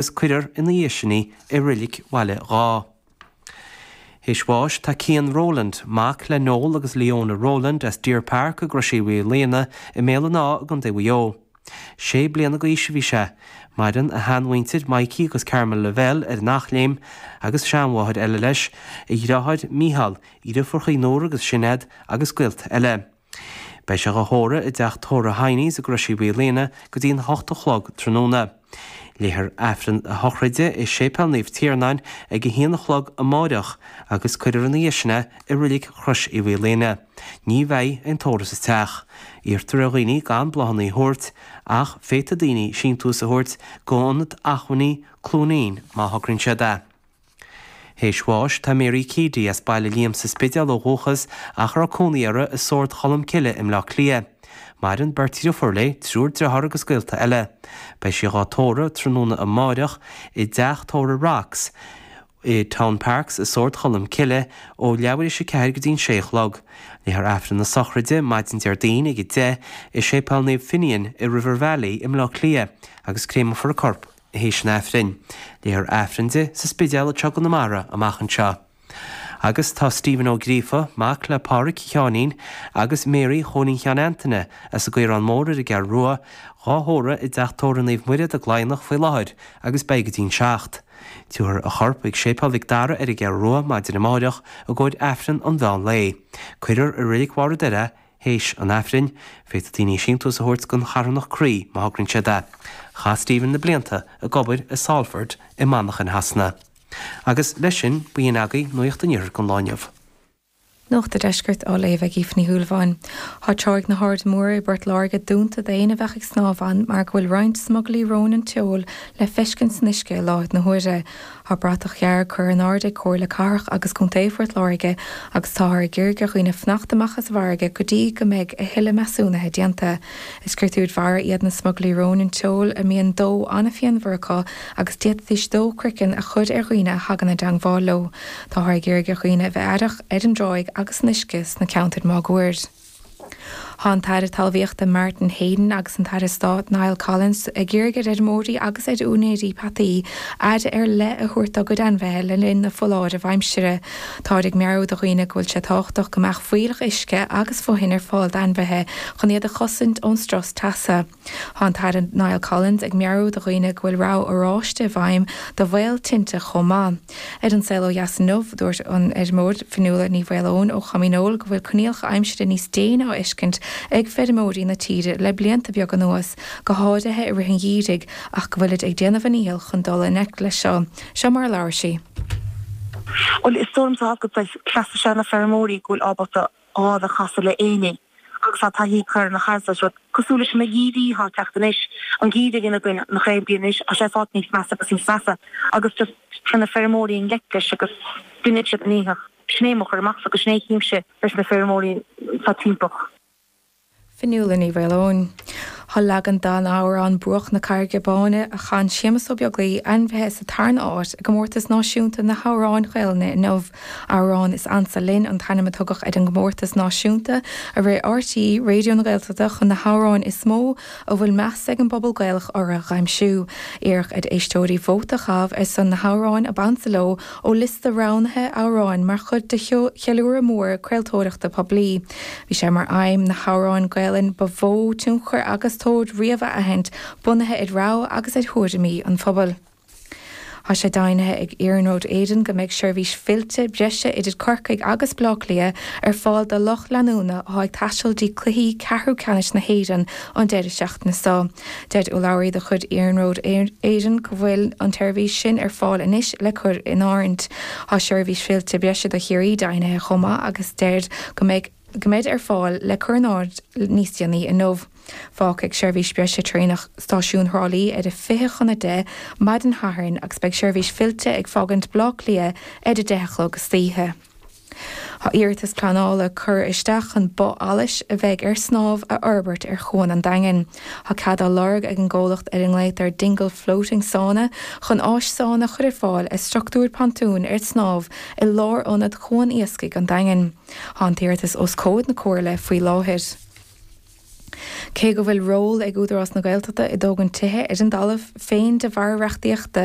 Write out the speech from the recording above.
agus cuirfear ina dhiaidh sin í i Reilig Bhaile Dháth. Théis bháis tá Cian Rowland, mac le Noel agus Leona Rowland as Deer Park i gCrois Uí Mhaoilíona i mBéal an Átha i gContae Mhaigh Eo. Sé bliana d'aois a bhí sé. Maireann a shean-mhuintir, Maidhcí agus Carmel Lavelle ar an Eachléim agus sean-mháthair eile leis, a dhriotháir Micheál, a dhriofúrachaí Nóra agus Sineád agus gaolta eile. Beidh sé dhá thórramh i dteach tórraimh Hiney's i gCrois Uí Mhaoilíona go dtí an h-ocht a chlog tráthnóna. Léifear Aifreann a shochraide i Séipéal Naomh Tiarnáin ag a h-aon a chlog amáireach agus cuirfear ina dhiaidh sin é i Reilig Chrois Uí Mhaoilíona. Ní bheidh aon tórramh sa teach. Iarrtar ar dhaoine gan bláthannaí a thabhairt ach féadfaidh daoine síntiús a thabhairt go Ionad Acmhainní Cluainín má thograíonn siad é. Théis bháis, tá Mary Keady as Baile Liam sa Spidéal ó dhúchas ach a raibh cónaí uirthi i Sord Cholm Cille i mBleá Cliath. Maireann beirt dhriofúr léi, triúr driotháir agus gaolta eile. Beidh sí dhá tórramh, tráthnóna amáireach, i dteach tórraimh Rocks i Town Parks i Sord Cholm Cille ó leathuair théis a ceathair go dtí'n sé a chlog. Léifear Aifreann na Sochraide maidin Déardaoin ag a deich i Séipéal Naomh Finian i River Valley i mBleá Cliath agus créamfar a corp théis an Aifrinn. Léifear Aifreann di sa Spidéal i gConamara amach anseo. Agus tá Stephen Ó Gríofa, mac le Pádhraic Sheáinín agus Mary Chóilín Sheáin Antaine, as an gCaorán Mór ar an gCeathrú Rua, dhá thórramh i dTeach Tórraimh Naomh Muire i gCladhnach faoi láthair agus beidh go dtí an 7. Tabharfar a chorp ag Séipéal Mhic Dara ar an gCeathrú Rua maidin amáireach i gcomhair Aifreann an mheán lae. Cuirfear i Reilig Bharr an Doire Théis an Aifrinn, féadfaidh daoine síntiús a thabhairt don charthanacht Croí má thograíonn siad é. Chaith Stephen na blianta ag obair i Salford i Manchain Shasana. Agus, leis sin, b'in agaibh nuaíocht an Iarthair an lá inniu. Nuacht a' Deiscirt á léamh ag Aoife Ní Shúilleabháin. Tá tráigh na hAirde Móire i bPort Láirge dúnta d'éinne a bheadh ag snámh ann mar go bhfuil roinnt smugairlí róin an tseoil le feiscint san uisce i láthair na huaire. Tá bratach dhearg curtha in airde ag Comhairle Cathrach agus Contae Phort Láirge agus táthar ag iarraidh ar dhaoine fanacht amach as an bhfarraige go dtí go mbeidh a thuilleadh measúnaithe déanta. Is créatúir mhara iad na smugairlí róin an tseoil a mbíonn dó an-phianmhar acu agus d'fhéadfaidís dó croiceann a chur ar dhaoine a thagann i dteangmháil leo. Táthar ag iarraidh ar dhaoine a bheith aireach ar an dtráigh agus san uisce sna ceantair máguaird. Tá an tAire Talmhaíochta Martin Heydon agus an tAire Stáit Niall Collins ag iarraidh ar fheirmeoirí agus ar úinéirí peataí aire ar leith a thabhairt dá gcuid ainmhithe le linn na foláireamh aimsire. Táthar ag meabhrú do dhaoine go bhfuil sé tábhachtach go mbeadh fuílleach uisce agus fothain ar fáil d'ainmhithe chun iad a chosaint ón strus teasa. Thá an tAire Niall Collins ag meabhrú do dhaoine go bhfuil rabhadh oráiste i bhfeidhm do bhaol tinte chomh maith. Ar An Saol Ó Dheas inniu, dúirt an feirmeoir Fionnuala Ní Mhaoileoin ó Chom Dhíneol go bhfuil coinníollacha aimsire níos déine á bhfeiscint ag feirmeoirí na tíre le blianta beaga anuas, go háirithe i rith an gheimhridh, ach go bhfuilid ag déanamh a ndícheall chun dul i ngleic leis seo. Seo mar a labhair sí. Bhuel, is dóigh liom sa chás go bhfuil cleachtadh is ea na feirmeoirí go bhfuil ábalta gá le casadh le éinní. agus thá taithí acu ar na chaillteanas rud cosúil leis an TB thá teacht anois, an TB a bhí againn le cúpla bliain anois, thá sé ag fáilt níos measa agus níos measa agus just téann na feirmeoirí i ngleic leis agus deineann siad a ndícheall. Sin é mo chur amach agus sin é chímse leis na feirmeoirí sa timpeall. Fionnuala Ní Mhaoileoin. Thá leagan don amhrán Bruach na Carraige Báine a chan Séamus Ó Beaglaoi ainmnithe sa tarna áit i gComórtas Náisiúnta na nAmhrán Gaelainne inniu. Amhrán is Ansa Linn an t-ainm a tugadh ar an gcomórtas náisiúnta a rith RTÉ Raidió na Gaeltachta chun na hamhráin is mó a bhfuil meas ag an bpobal Gaelach orthu a aimsiú. Iarradh ar éisteoirí vóta a chaitheamh ar son na n-amhrán ab ansa leo ó liosta roghnaithe amhrán mar chuid de cheiliúradh mór craoltóireachta poiblí. Bhí sé mar aidhm na hamhráin Gaelainne ba mhó tionchar agus tóir riamh a aithint, bunaithe ar rogha agus ar thuairimí an phobail. Thá sé deimhnithe ag Iarnród Éireann go mbeidh seirbhís fillte breise idir Corcaigh agus Baile Átha Cliath ar fáil do lucht leanúna athá ag taisteal dtí cluichí ceathrú ceannais na hÉireann an deireadh seachtaine so. Deir urlabhraí de chuid Iarnród Éireann go bhfuil an tseirbhís sin ar fáil anois le cur in áirithint. Thá seirbhís fillte breise do Chiarraí deimhnithe chomh maith agus deirid go mbeidh. Ticéad ar fáil le cur in áirithint níos déanaí inniu. Fágfaidh seirbhís breise traenach Stáisiún Thrá Lí ar a 20 chun 10 maidin Dé Sathairn agus beidh seirbhís fillte ag fágaint Baile Átha Cliath ar a 10 a chlog istoíche. Tá iarratas pleanála curtha isteach chun both allais a bheidh ar snámh a fhorbairt ar Chuan an Daingin. Tá cead á lorg ag an gcomhlacht ar a nglaotar Dingle Floating Sauna chun áis sána a chur ar fáil ar structúr pontúin ar snámh i lár-ionad Chuan Iascaigh an Daingin. Thá an t-iarratas os comhair na Comhairle faoi láthair. Cé go bhfuil ról ag Údarás na Gaeltachta i dtógaint tithe ar a dtalamh féin de bharr reachtaíochta